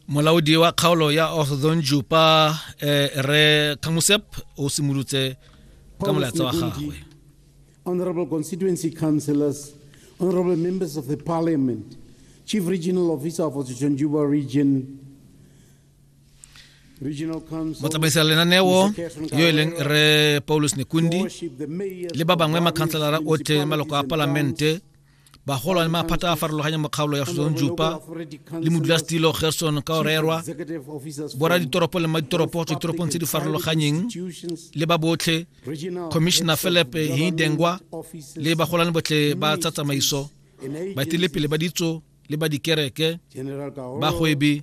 molaodi wa kgaolo ya orthon jupa eh, re kamusep o simolotse ka molaetsa wa gagwe honorable constituency councillors honorable members of the parliament chief regional officer of orthon juba region motsamaisi ya lenaneo yo e leng re paulus nekundi le ba bangwe makhanselara otlhe maloko a palamente bagolwane maphata a farologanye mo kgaolo ya Suzon Jupa le modulasetilo Gerson ka orerwa bora ditoropo le maditoropo tswa ditoropong tse di farologanyeng le ba botlhe commissioner Philip Hindengwa le bagolwane botlhe ba tsa tsamaiso baetelepele ba ditso le ba dikereke bagwebi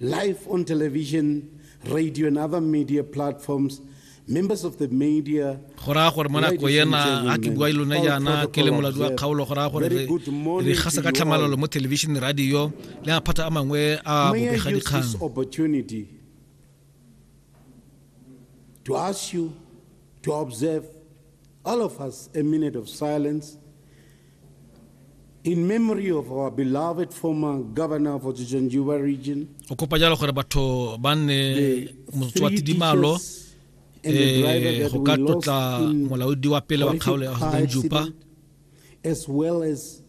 Live on television, radio, and other media platforms, members of the media, go raya gore mo nako ena ga ke bua lone jaana ke le moladi wa kgaolo go raya gore re gasa ka tlhamalalo mo television radio le maphata a mangwe a bobega dikgang to ask you to observe All of us, a minute of silence in memory of our beloved former governor of Ojijanjuba region. O kopa jalo gore batho ba nne motswati dimalo eh go ka tlotla molaodi wa pele wa kgaolo ya Ojijanjuba as well as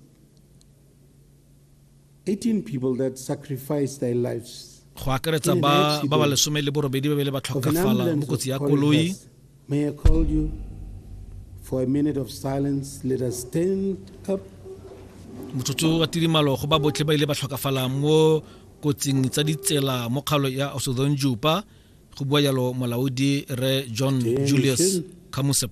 18 people that sacrificed their lives go akaretsa ba ba lesome le borobedi ba bele ba tlhokafala mo kotsi ya koloi May I call you for a minute of silence? Let us stand up. motsotso wa tirimalo go ba botlhe ba ile ba tlhokafala mo kotsing tsa ditsela mo kgalo ya osodon jupa go bua yalo molaodi re john julius kamusep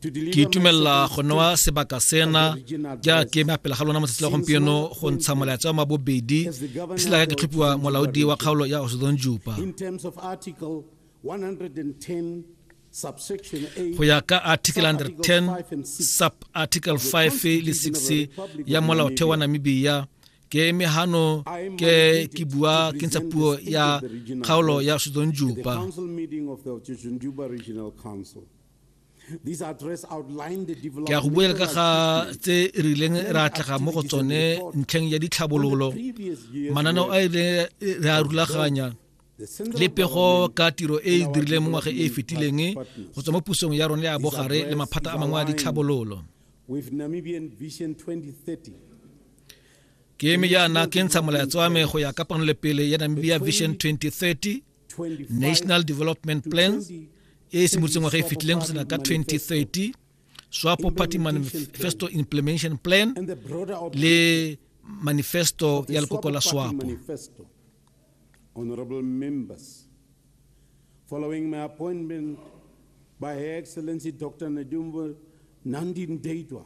ke itumelela go newa sebaka sena ja ke ema pele ga lona matsatsi la gompieno go ntsha molaetsa wa mabobedi ke sela ka ke tlhophiwa molaodi wa kgaolo ya osodon jupa go ya ka article 110 sub article 5 le 6 ya molaotheo wa namibia ke eme hano ke ke bua ke ntsha puo ya kgaolo ya sudon juba ke a go buela ka ga tse e rileng re atlega mo go tsone ntlheng ya ditlhabololo mananeo a ile re a rulaganya le pego ka tiro e e dirileng mo ngwaga e e fetileng go tswa mo pusong ya rone ya bogare le maphata a mangwe a ditlhabololo ke eme jaana ke ntsha molaetso wa me go ya ka pele ya namibia vision 2030 national development plan e e simolotseng ngwaga e fetileng go sena ka 2030 swapo party manifesto implementation plan le manifesto ya lekoko la swapo Honorable members, following my appointment by Her Excellency Dr. Nadumba Nandi Ndaitwah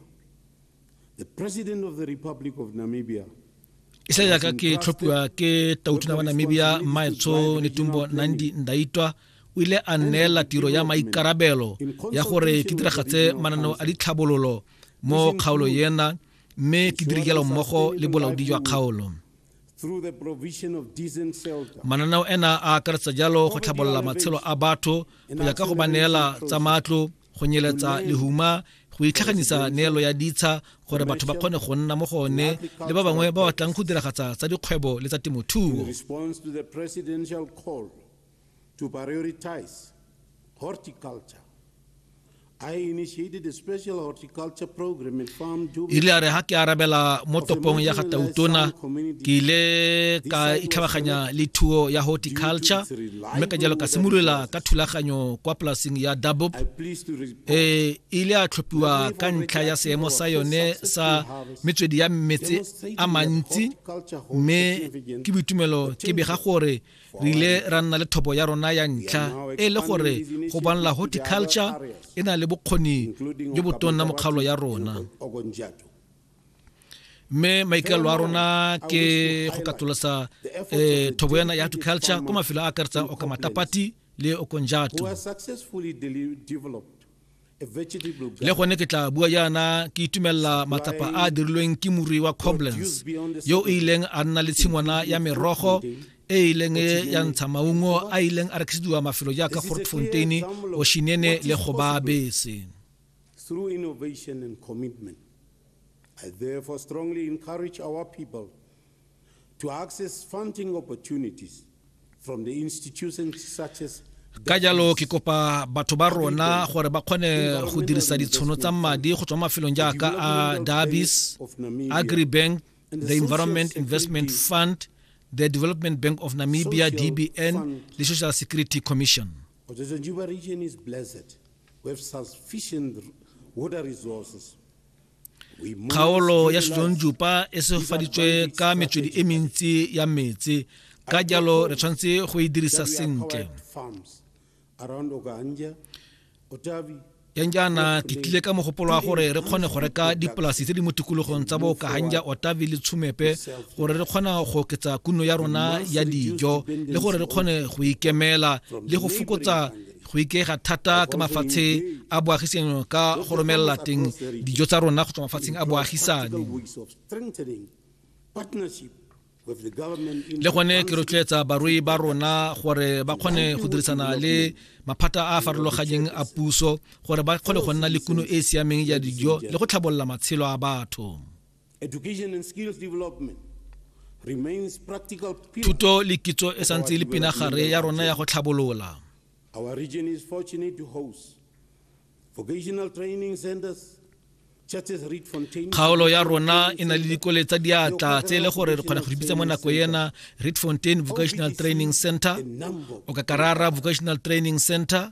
isa yaka ke tlhophiwa ke tautona wa namibia maetsho netumbo nandi ndaitwa o ile a neela tiro ya maikarabelo ya gore ke diragatse mananeo a ditlhabololo mo kgaolo yena mme ke dirikelo mmogo le bolaodi jwa kgaolo mananeo ena a akaretsa jalo go tlhabolola matshelo a batho go ya ka go ba neela tsa matlo go nyeletsa lehuma go itlhaganisa neelo ya ditsha gore batho ba kgone go nna mo go one le ba bangwe ba batlang go diragatsa tsa dikgwebo le tsa temothuo to prioritize horticulture ile a re ha ke arabela mo topong ya ga tautona ke ile ka itlhabaganya le thuo ya horticulture mme ka jalo ka simolola ka thulaganyo kwa polaseng ya dabop e ile a tlhophiwa ka ntlha ya seemo sa yone sa metswedi ya metse a mantsi mme ke boitumelo ke bega gore re ile ra nna le thobo ya rona ya ntlha e le gore go bonla horticulture e na le bokgoni jo botonna mokgaolo ya rona mme maikaelo a rona ke go katolosa eh, thobo ena ya agriculture ko mafelo a akaretsang okamatapati le okonjato le gone ke tla bua jaana ke itumelela matsapa a a dirilweng ke morui wa coblens yo o ileng a nna le tshingwana ya merogo e ileng ya ntsha maungo a ileng a rekisediwa mafelo jaaka fort fontaine oshinene le gobabese Through innovation and commitment, I therefore strongly encourage our people to access funding opportunities from the institutions such as ka jalo ke kopa batho ba rona gore ba kgone go dirisa ditshono tsa madi go tswa mafelong jaaka a dabis agribank the environment investment fund the development bank of namibia dbn le social security commission kgaolo ya setsonjupa e segofaditswe ka metswedi e mentsi ya metsi ka jalo re tshwanetse go e dirisa sentle yang jaana ke tlile ka mogopolo wa gore re kgone go reka dipolasi tse di mo tikologong tsa bookahanja otavi le tshumepe gore re kgona go oketsa kuno ya rona ya dijo le gore re kgone go ikemela le go fokotsa go ikega thata ka mafatshe a boagisano ka go romelela teng dijo tsa rona go tswa mafatsheng a boagisane le gone ke rotloetsa barui ba rona gore ba kgone go dirisana le maphata a a farologanyeng a puso gore ba kgone go nna le kuno e e siameng ya dijo le go tlhabolola matshelo a batho Education and skills development remains practical pillar. Thuto le kitso e santse e le pinagare ya rona ya go tlhabolola. Our region is fortunate to host vocational training centers kgaolo ya rona e na le dikole tsa diatla tse e le gore re kgona go dipitsa mo nako ena reed fontain vocational training center o ka karara vocational training center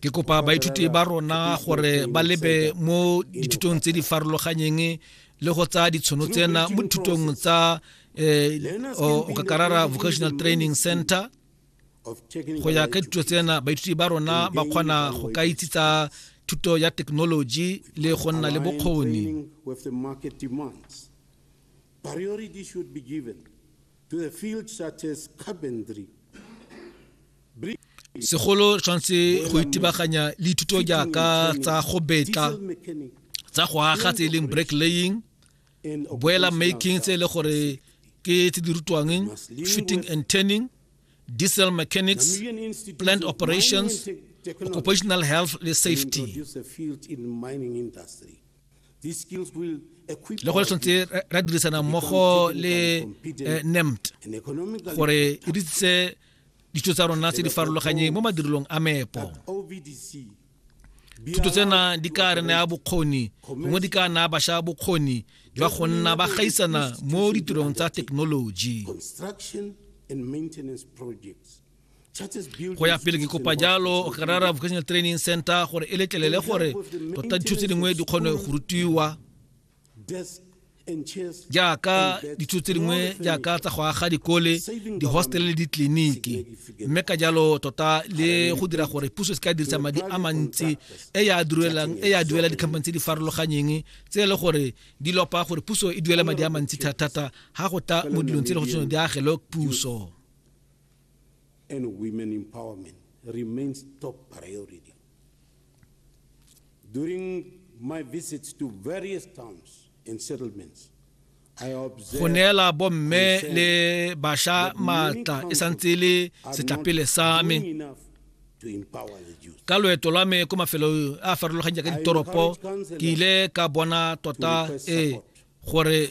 ke kopa baithuti ba rona gore ba lebe mo dithutong tse di farologanyeng le go tsaya ditshono tsena mo dithutong tsa um okakarara vocational training center go ya ka dithuto tsena baithuti ba rona ba kgona go ka itse tsa thuto ya thekenoloji le go nna le bokgoni Segolo re tshwanetse go itebaganya le dithuto jaaka tsa go betla tsa go aga tse e leng break laying boela making tse e le gore ke tse di rutwang fitting and turning diesel mechanics plant operations occupational health le safety le go le tshwanetse ra dirisana mmogo le eh, nemt gore e ditsise ditso tsa rona tse di farologanyeng mo madirelong a meepo thuto tsena di ka re naya bokgoni gongwe di ka naya bašwa bokgoni jwa go nna ba gaisana mo ditirong tsa thekenoloji go ya pele ke kopa jalo karara vocational training center gore e letlelele gore tota dithuto tse dingwe di kgone go rutiwa jaaka dithuto tse dingwe jaaka tsa go aga dikole di-hostel le ditleliniki mme ka jalo tota le go dira gore puso e se ka dirisa madi a mantsi e ya duelang e ya duela dikhamphane tse di farologanyeng tse e le gore di lopa gore puso e duela madi a mantsi thata-thata ga go ta mo dilong tse e le go tshwane di agelo puso and women empowerment remains top priority. During my visits to various towns and settlements, go neela bomme le basha maatla e santse le setlapele sa me ka loeto lwa me ko mafelong a farologanyang ka ditoropo ke ile ka bona tota e gore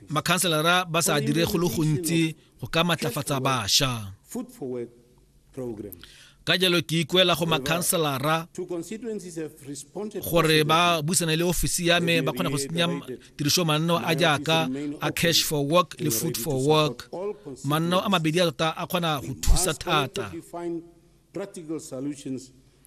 makhanselara ba sa dire go le gontsi go ka matlafatsa bašwa ka jalo ke ikuela go makhanselara gore ba busane le ofisi ya me ba kgone go tsenya tiriso manno a jaaka a cash for work le food for work manno a mabedi a tota a kgona go thusa thata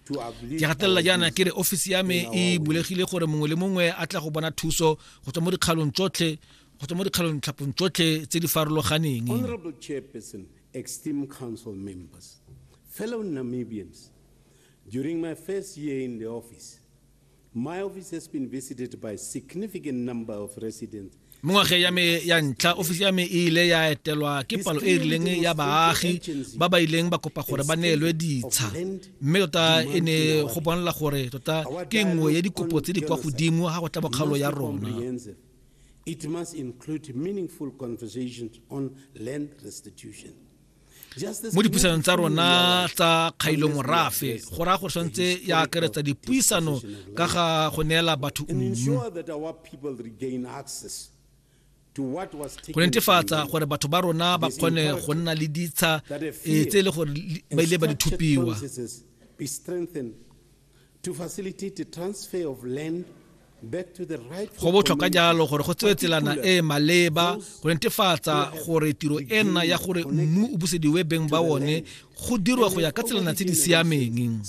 ke gatelela jaana ke re ofisi ya me e bulegile gore mongwe le mongwe a tla go bona thuso go tswa mo dikgalong tsotlhe go tswa mo dikgalong tlhapong tsotlhe tse di farologaneng honorable chairperson esteemed council members fellow namibians during my first year in the office Mo ngwageng ya me ya ntlha, ofisi ya me e ile ya etelwa ke palo e e rileng ya baagi ba ba ileng ba kopa gore ba neelwe ditsha. Mme tota e ne go bonala gore tota ke nngwe ya dikopo tse di kwa godimo ga go tla bokgaolo ya rona. It must include meaningful conversations on land restitution. mo dipuisanong tsa rona tsa kgailo morafe go raya gore tshwanetse ya akaretsa dipuisano ka ga go neela batho mmu go netefatsa gore batho ba rona ba kgone go nna le ditsha eh, tse e le gore ba ile ba di thupiwa to facilitate the transfer of land go botlhokwa jalo gore go tsewe tselana e e maleba go netefatsa gore tiro e nna ya gore mmu o busediwe beng ba one go dirwa go ya ka tselana tse di siameng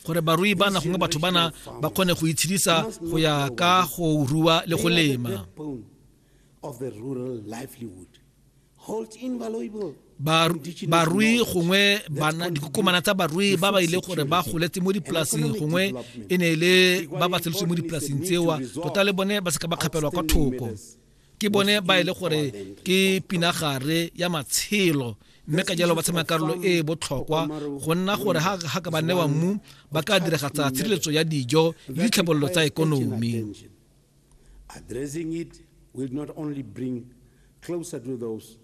gore barui bana gongwe batho bana ba kgone go itshedisa go ya ka go rua le go lema barui gongwe bana dikokomana tsa barui ba ba ile gore ba goletse mo dipolaseng gongwe e ne e le ba ba tseletse mo dipolaseng tsewa tota le bone ba seka ba kgapelwa kwa thoko ke bone ba e le gore ke pinagare ya matshelo mme ka jalo ba tshamaya karolo e e botlhokwa go nna gore ga ka ba newa mmu ba ka diragatsa tshireletso ya dijo le ditlhabololo tsa ekonomi Addressing it will not only bring closer to those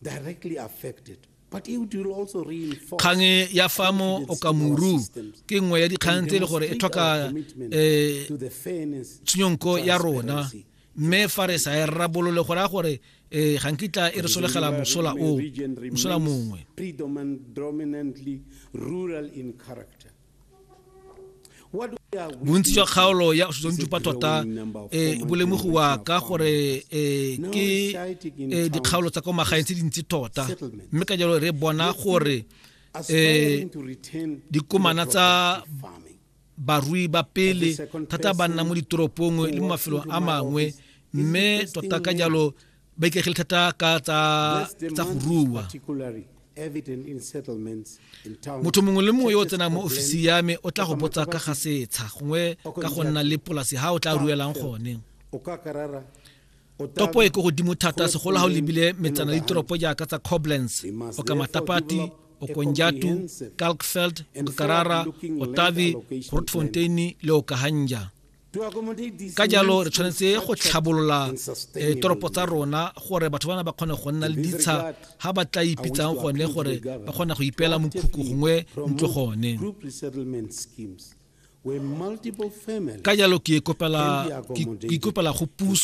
directly affected kgang e ya fa mo okamuru ke nngwe ya dikgang tse e le gore e tlhoka um tshenyonko ya rona mme fa re sa e rabolole go raya gore um ga nkitla e re solegela mosola o mosola mongwe bontsi jwa kgaolo ya setsonitšupa tota e bolemogiwa ka gore e, ke e, dikgaolo tsa kwa magaeng tse dintsi tota mme ka jalo re bona gore um dikomana tsa barui ba pele thata ba nna mo ditoropong le mo mafelong a mangwe mme tota ka jalo ba itlegile thata ka tsa tsa go rua motho mongwe le mongwe yo o tsenang mo ofisi ya me o tla go botsa ka ga setsha gongwe ka go nna le polasi ha o tla ruelang gone topo e ko godimo thata segolo ga o lebile metsana le ditoropo jaaka tsa coblance o ka matapati okonjatu kalkfeld okarara otavi grootfontein le okahanja ka jalo re tshwanetse go tlhabolola eh, toropo tsa rona gore batho bana ba kgone go nna le ditsha ga ba tla ipitsang gone gore ba kgona go ipeela mokhukhu gongwe ntlo gone ka jalo ke ikopela go puso